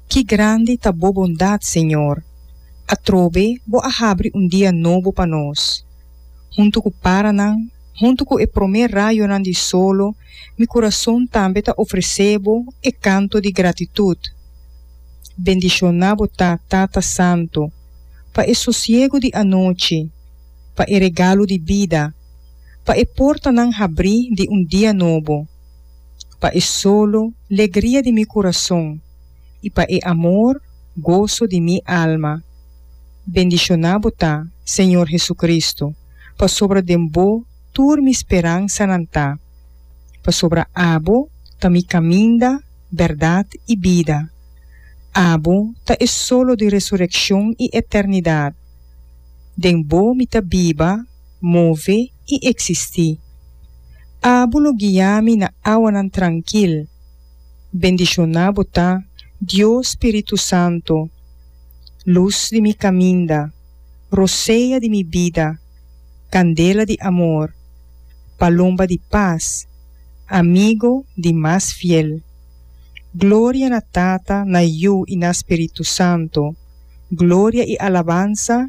Ki grandi ta Bo bondat, Señor! Atrobe Bo a habri un dia nobo pa nos. Huntu cu paranan, huntu cu e prome rayonan di solo, mi curason tambe ta ofrece Bo e canto di gratitud. Bendiciona Bo ta, Tata Santo, pa e sosiego di anochi, pa e regalo di bida, pa e portanan habri di un dia nobo. pa e solo legria di mi kurason i pa e amor goso di mi alma. Bendishoná Bo ta, Señor Hesukristu, pasobra den Bo tur mi speransanan ta, pasobra Abo ta mi kaminda, bèrdat i bida. Abo ta e solo di resurekshon i eternidat. Den Bo mi ta biba, move i eksistí. Abo lo guia mi na awanan trankil. Bendishoná Bo ta, Dios Spiritu Santu, Lus di mi kaminda, Rosea di mi bida, Kandela di amor, Palomba di pas, Amigo di mas fiel. Gloria na Tata, na Yu i na Spiritu Santu, Gloria i alabansa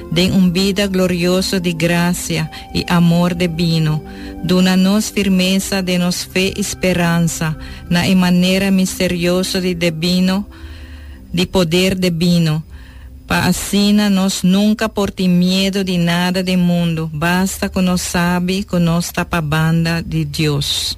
den un bida glorioso di gracia i amor de bino, duna nos firmesa den nos fe i speransa na e manera misterioso di de bino, di poder de bino, pa asina nos nunca por tin miedo di nada den mundu, basta cu nos sabi cu nos ta pa banda di Dios.